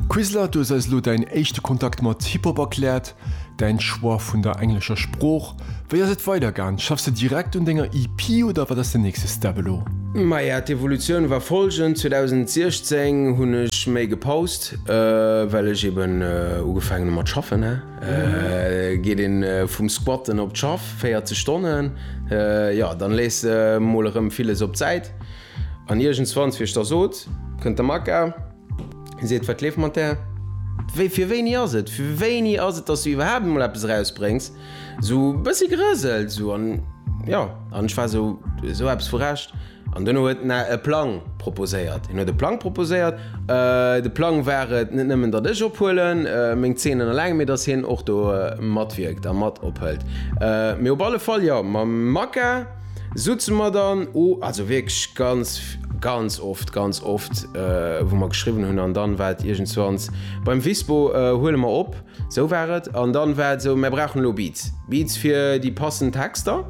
Quizler, du hues eis elo däin éischte Kontakt mat Hip-Hop erkläert, däin Choix vun der englescher Sprooch. Wéi ass et weider gaang? Schaffs de direkt un denger EP oder wat ass den nächste Step elo? Maja, d'Evolutioun war folgend, 2016 hunn ech méi gepaust, well ech eben ugefaangen hu mat schaffen. Geet een vum Squatten op d'Schaff, 40 Stonnen, jo dann lees de mol erëm villes op d'Säit. An iergendswanns wier ech da sot, kënnt de Makka, seet, Wat leeft mat där? Wéi, fir wéini ass et? Fir wéini ass et, dass du iwwerhaapt emol eppes erausbréngs? Esou e bëssi gerëselt, esou. An jo, an ech war esou, esou eppes vu Recht. An duerno huet en e Plang proposéiert. En huet e Plang proposéiert. De Plang war et, net nëmmen, datt ech ophuelen, meng Zeenen eleng, mee datt hien och do matwierkt a mat ophëlt. Mee op alle Fall, jo, mam Makka. Soutzen mer dann o, also wierklech ganz, ganz oft, ganz oft, wou mer geschriwwen hunn an dann war et iergendswanns, beim Visbo huele mer op, sou war et, an dann war et sou, mer brauchen elo Beats, Beats fir déi passend Texter,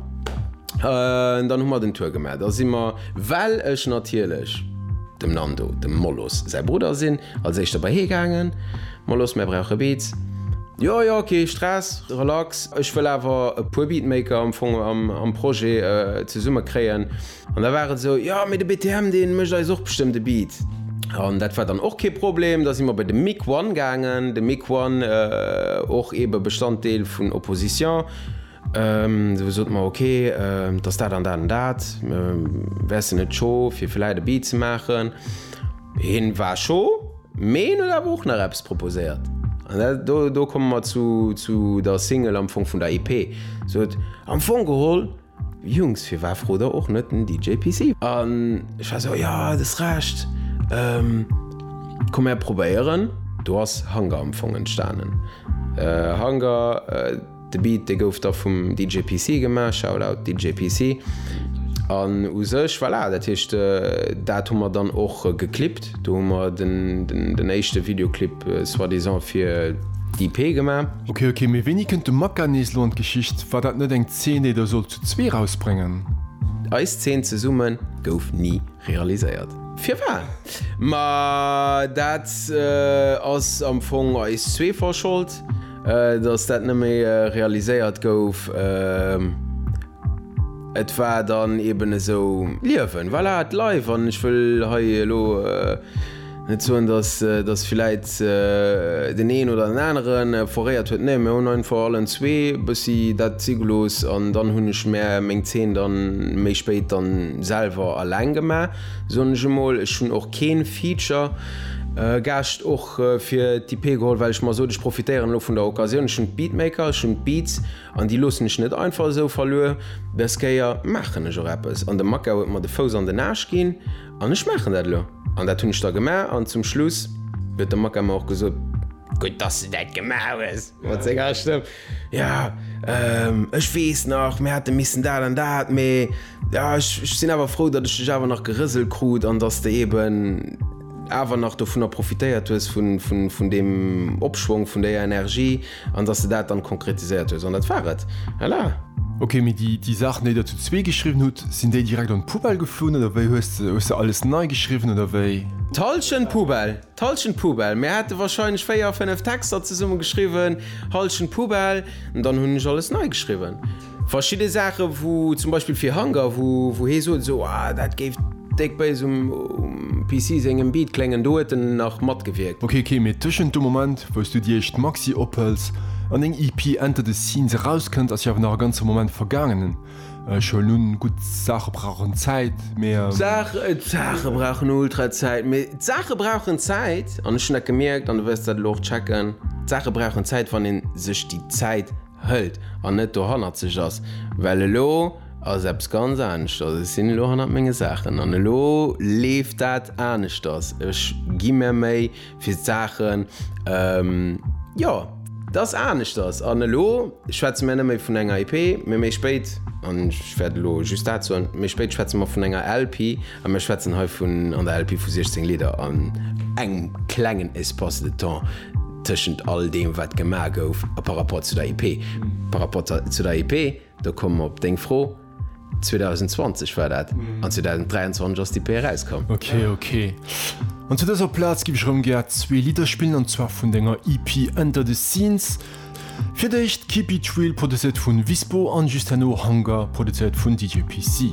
dann hu mer den Tour gemaach, da si mer, well ech natierlech dem Nando, dem Molos säi Brudder sinn, als éischter bei hie gaangen. Mol los, mär brauche Beats. Jo, jo, kee Stress, relax. Ech wëll awer e puer Beatmaker am Fong am Projet zesumme kréien. An da war et esou, jo, mee de BTM, dee mécht eis och bestëmmt e Beat. An dat war dann och kee Problem. Da si mer bei de Mick One gaangen. De Mick One, och eebe Bestanddeel vun Opposition. Sou sot mer ok, et ass dat an dat an dat, wärst de net scho fir villäit e Beat ze maachen? Hien war scho, mee hien huet awer och nach eppes proposéiert an dat, do do komme mer zu zu der Single am Fong vun der EP, sot am Fong geholl, Jungs, firwat frot der och net den DJ PC? An ech war sou, jo, et ass Recht, komm mär probéieren. Do ass Hunger am Fong entstanen, Hunger. De Beat dee gouf da vum DJ PC gemaach, Shoutout DJ PC, an u sech, voilà, dat heescht dat hu mer dann och geclipt. Do hu mer den éischte Videoclip soi-disant fir d'EP gemaach. Ok ok, mee wéini kënnt de Maka nees lo an d'Geschicht? War dat net eng Zeen déi der sollt zu zwee erausbréngen? Eis Zeen zesumme gouf ni realiséiert. Firwat? Ma dat ass am Fong eis zwee Verschold. Datt dat net méi realiséiert gouf, et war dann eben esou Liewen, voilà, et leif. An ech wëll hei elo net soen, datt villäit deen een oder deen anere foréiert huet, nee, mir hunn einfach allen zwee e bëssi dat si gelooss an dann hunn ech mär meng Zeen dann méi spéit dann selwer alleng gemaach, soen ech emol. Ech hunn och keen Feature-Gaascht. fir d'EP geholl, well ech mer sot, ech profitéieren elo vun der Occasioun, ech hunn d'Beatmaker, ech hunn d'Beats an déi loossen ech net einfach esou verluer, des Kéier maachen ech och eppes an de Makau huet mer de Fouss an den Aarsch ginn an ech maachen dat elo an dat hunn ech da gemaach an zum Schluss huet de Makau mer och gesot, gutt dass du dat gemaach hues mat senger Stëmm. Ja, ehm, ech weess nach, mir hate missen dat an dat, mee ja, ech, ech sinn awer frou, datt ech dech awer nach gerëselt krut an datt s de eben awer nach dovunner profitéiert hues, vun, vun, vun deem Opschwong, vun där Energie an datt s de dat dann konkretiséiert hues. An dat war et. Voilà! Ok, mee déi, déi Saachen, déi Der zu zwee geschriwwen hutt, sinn déi direkt an d'Poubelle geflunn oder wéi? Hues de, hues de alles nei geschriwwen oder wéi? D'Hallschent Poubelle! D'Hallschent Poubelle, mir hate wahrscheinlech 4 a 5 Texter zesumme geschriwwen, Hallschent Poubelle, an dann hunn ech alles nei geschriwwen. Verschidde Saache wou zum Beispill fir Hunger, wou hee sot esou, ah dat géif déck béis um PC sengem Beat kléngen, do huet en nach matgewierkt. Ok ok, mee tëschent dem Moment wou s du dir eischt Maxi ophëls an deng EP Enter the Scenes erauskënnt ass jo awer nach e ganze Moment vergaangenen. Ech hunn nun gutt Saache brauchen Zäit, mee. D'Saache, d'Saache brauchen ultra Zäit, mee. D'Saache brauchen Zäit, an ech hunn dat gemierkt, an du wëlls dat elo och checken, d'Saache brauchen Zäit, wann ee sech déi Zäit hëlt an net dohannerzeg ass, well elo ass eppes ganz aneschters. Ech sinn elo hannert menge Saachen an elo leeft dat aneschters. Ech gi mär Méi. fir d'Saachen, jo, dass aneschters. An elo schwätze mir net méi vun enger EP, mee méi spéit, an ech wäert elo just dat soen, méi spéit schwätze mer vun enger LP a mir schwätzen hei vun, an der LP, vu 16 Lidder an engem klengen Espace de temps tëschent all deem, wat gemaach gouf, par rapport zu der EP. Par rapport zu der EP. Da komme mer op deng Fro, 2020 war dat, an 2023 ass d'EP erauskomm. Ok, ok. An zu dëser Plaz giff ech erëm gär zwee Lidder spillen, an zwar vun denger EP Under the Scenes. Fir d'éischt Keep It Real, produzéiert vun Vispo, an just herno Hunger, produzéiert vun DJ PC.